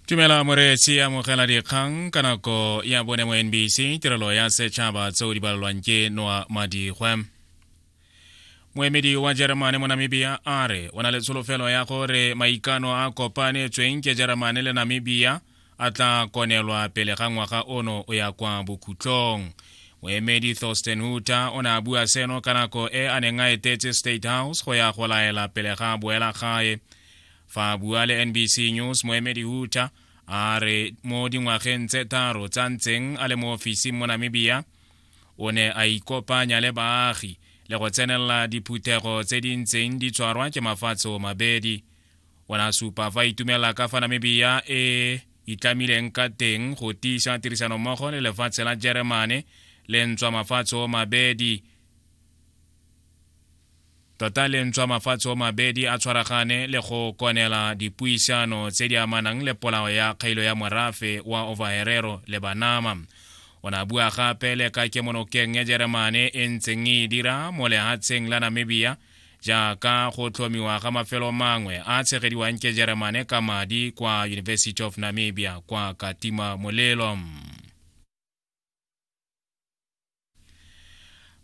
tumela moreetsi amogela dikgang ka nako ya bone mo nbc tirelo ya setšhaba tseo di balelwang ke noa madigwe moemedi wa jeremane mo namibia a re o na le tsholofelo ya gore maikano a kopanetsweng ke jeremane le namibia a tla konelwa pele ga ngwaga ono o ya kwa bokhutlong moemedi thorsten huter o ne a bua seno ka nako e a neng a etetse state house go ya go laela pele ga boela gae fa a bua le nbc news moemedi huter a re mo dingwageng tse tharo tsa ntseng a le mo ofising mo namibia o ne a ikopanya le baagi le go tsenelela diphuthego tse di ntseng di tshwarwa ke mafatshe o mabedi o ne a supa fa itumela ka fa namibia e itlamileng ka teng go tiisa tirisanommogo le lefatshe la jeremane le ntswa mafatshe o mabedi tota le ntswa mafatshe o mabedi a tshwaragane le go konela dipuisano tse di amanang le polao ya kgailo ya morafe wa overherero le banama o ne a bua gape le ka kemonokeng ya jeremane e ntseng e dira mo lehatsheng la namibia jaaka go tlhomiwa ga mafelo mangwe a tshegediwang ke jeremane ka madi kwa university of namibia kwa katima molelo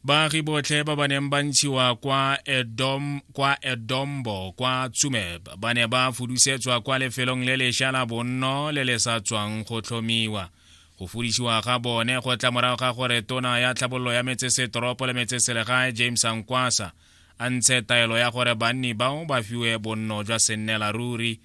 baagi botlhe ba ba neng ba ntshiwa kwa edom kwa edombo kwa tsumeb ba ne ba fudusetswa kwa lefelong le lesha la bonno le le sa tswang go tlhomiwa Go fodišiwa ga bone go tla morago ga gore tona ya tlhabololo ya metsesetoropo le metseselegae James Ankwasa a ntshe taelo ya gore banni bao ba fiwe bonno jwa sennela ruri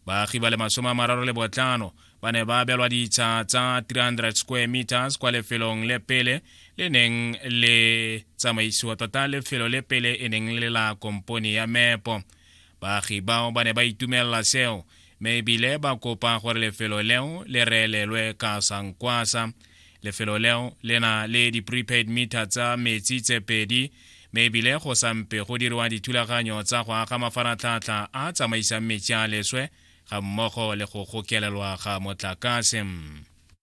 baagi ba le masome a mararo le botlhano ba ne ba abelwa ditsha tsa 300 square meters kwa lefelong le pele le neng le tsamaisiwa tota lefelo le pele e neng le la kompone ya mepo Baagi bao ba ne ba itumelela seo mme ebile ba kopa gore lefelo leo le reelelwe ka sankwasa lefelo leo le na le di-prepaid meter tsa metsi tse pedi mme ebile go sampe go diriwa dithulaganyo tsa go aga mafaratlhatlha a tsamaisang metsi a leswe ga mmogo le go gokelelwa ga motlakase